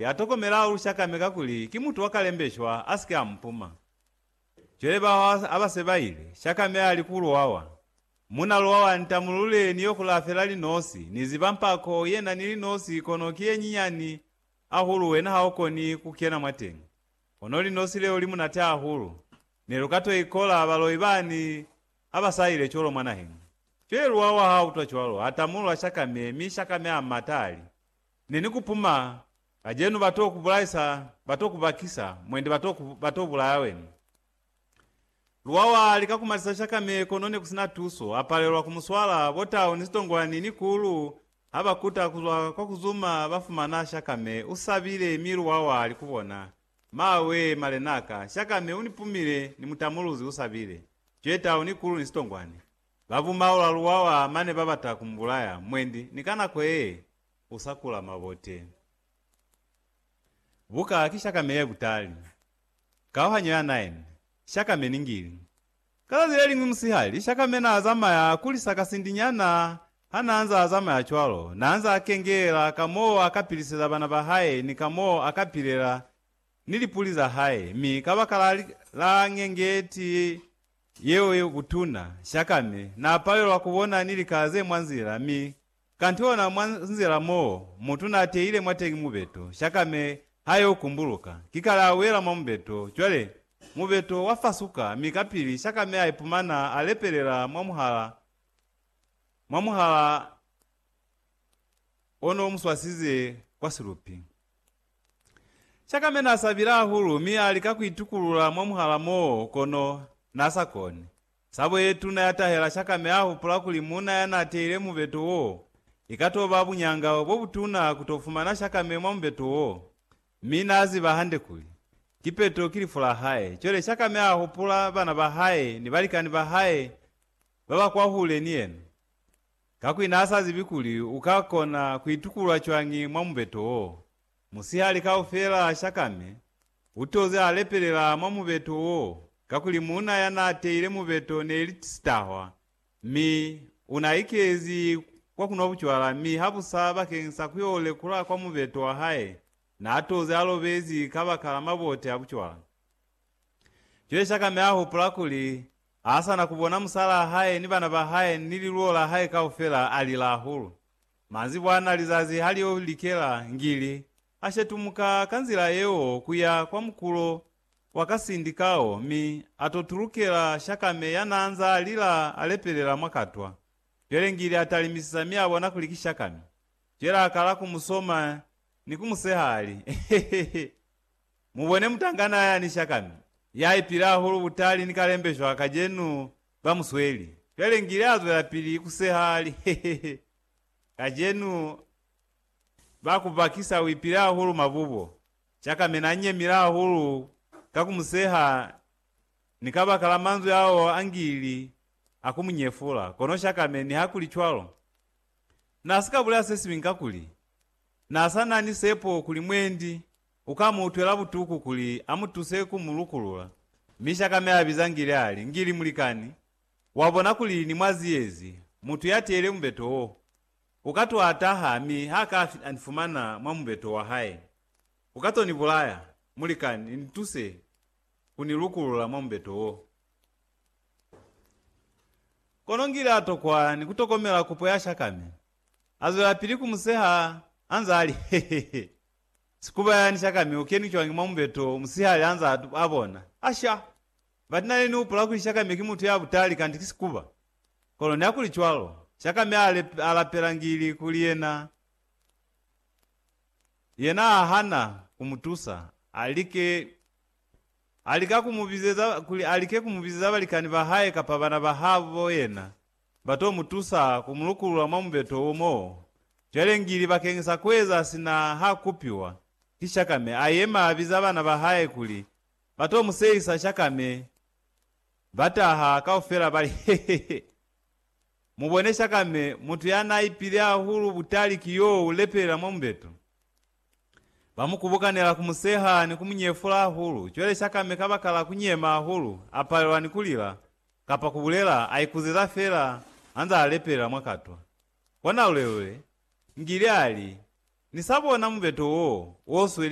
Ya tokomela u shakame kakuli ki mutu wa kalembeshwa a si ke a mu puma. Cwale bao ha ba se ba ile, shakame a li ku luwawa, Muna luwawa, ntamulule ni yo kula fela linosi, ni ziba mpako ye na ni linosi kono ki ye nyinyani ahulu wena ha u koni ku kena mwateñi. Kono linosi leo li munate ahulu, ne lu ka to ikola baloi bani ha ba sa ile cwalo mwa naheñi. Cwale luwawa ha utwa cwalo, a tamulula shakame, mi shakame a mata a li, Ne ni ku puma, kacenu ba t'o ku bulaisa, ba t'o ku bakisa, mwendi ba t'o ku, ba t'o bulaya wena. Luwawa li ka kumatisa shakame kono ne ku si na tuso, a palelwa ku mu swala, bo tau ni zitongwani ni kulu ha ba kuta ku zwa kwa ku zuma ba fumana shakame, u sabile, mi luwawa li ku bona, Mawee, malen'a ka, shakame u ni pumile, ni mutamuluzi u sabile, cwetau ni kulu ni zitongwani. Ba bumaula luwa wa mane ba bata ku mbulaya, mwendi ni ka nako ye u sa kula mabote. Buka ki shakame ye butali. Kauhanyo ya 9, Shakame ni ngili. Ka zazi le liñwi musihali, shakame n'a zamaya a kulisa ka sindi nyana. Ha n'a nz'a zamaya cwalo, n'a nz'a kengelela ka m'o a ka piliseza bana ba hae ni ka m'o a ka pilela ni lipuli za hae, mi kabakala la ñengeti Yeo ye butuna, Shakame n'a palelwa ku bona ni likala ze mwa nzila, mi kantiona mwa nzila m'o mutu n'a teile mwateñi mubeto, Shakame ha y'o kumbuluka, kikale a wela mwa mubeto. Cwale mubeto wa fasuka, mi kapili Shakame a ipumana a lepelela mwa muhala, mwa muhala o n'o mu swasize kwa silupi. Chakame n'a sabile hahulu mi a lika ku itukulula mwa muhala moo, kono n'a sa koni. Sabo ye tuna ya tahela Chakame a hupula kuli muuna ya n'a teile mubeto woo, i ka t'o ba buñanga bo butuna ku t'o fumana Chakame mwa mubeto woo. Mi n'a ziba hande kuli, kipeto ki lifu la hae. Cwale Chakame a hupula bana ba hae ni balikani ba hae ba ba kwahule ni yena. Kakuli n'a sa zibi kuli u ka kona ku itukulula cwañi mwa mubeto wo. Musihali kaufela a shakame, u toze a lepelela mwa mubeto wo, kakuli muuna ya n'a teile mubeto ne li sitahwa, mi u n'a ikezi kwa ku nwa bucwala, mi habusa bakeni sa ku y'o lekula kwa mubeto wa hae, n'a toze a lobezi kabakala mabote a bucwala. Cwale shakame a hupula kuli Haasana kubona musalaa hae ni bana ba hae ni liluo la hae kaufela, alila hahulu. Manzibwa ana lizazi halio likela, ngili, ashetumuka ka nzila yeo kuya kwa mukulo wa kasindi kao mi atotulukela Shakame yanaanzaa lila alepelela mwa katwa. Cwale ngili atalimisisa mi abona kuli ki Shakame. Cwale akala kumusoma ni kumuseha ali, Hehehe! Mubone mutangana ya ni shakami, ya ipila hahulu butali ni kalembeshwa kacenu ba musweli. Cwale ngile azwelapili kuseha ali, Hehehe, kacenu ba kubakisa uipile hahulu mabubo. Shakami na nyemile hahulu ka kumuseha ni kabaka la manzwi ao angili a kumunyefula, kono Shakami nihakuli cwalo. Na sika bulela sesiñwi kakuli, na sa na ni sepo kuli mwendi U ka mu utwela butuku kuli a mu tuse ku mu lukulula. Mi shaka mi a biza Ngili a li, Ngili, mulikani, wa bona kuli ni mwa ziyezi, mutu ya teile mubeto wo. U ka to a taha mi ha ka a ni fumana mwa mubeto wa hae, u ka to ni bulaya. Mulikani, ni tuse ku ni lukulula mwa mubeto wo. Kono Ngili a tokwa ni ku tokomela kupo ya shaka mi a zwelapili ku mu seha a nza a li, He-he-he! Sikubayani sha kami u kenwi cwañi mwa mubeto musihali anza atu a bona? Asha! But nane ni upula kuli sha kami ki mutu ya butali kanti ki sikuba. Kono niakuli cwalo, sha kami a a lapela ngili kuli yena, yena a hana ku mu tusa. A like, a lika ku mu bizeza kuli a like ku mu bizeza balikani ba hae kapa bana ba habo yena. Ba to mu tusa ku mu lukulula mwa mubeto wo mo cwale ngili bakeñisa ku eza sina ha kupiwa ki shakame. A yema a biza bana ba hae kuli ba to mu seyisa shakame. Ba taha kaufela ba li, He, he, he! Mu bone shakame, mutu ya n'a ipile hahulu butali ki yo u lepelela mwa mubeto. Ba mu kubukanela ku mu seha ni ku mu nyefula hahulu. Cwale Shakame kabakala ku nyema hahulu, a palelwa ni ku lila, kapa ku bulela, a ikuzeza feela anzaa lepelela mwa katwa. Kona lulelule, Ngili a li, Ni sa bona mubeto woo, wo sweli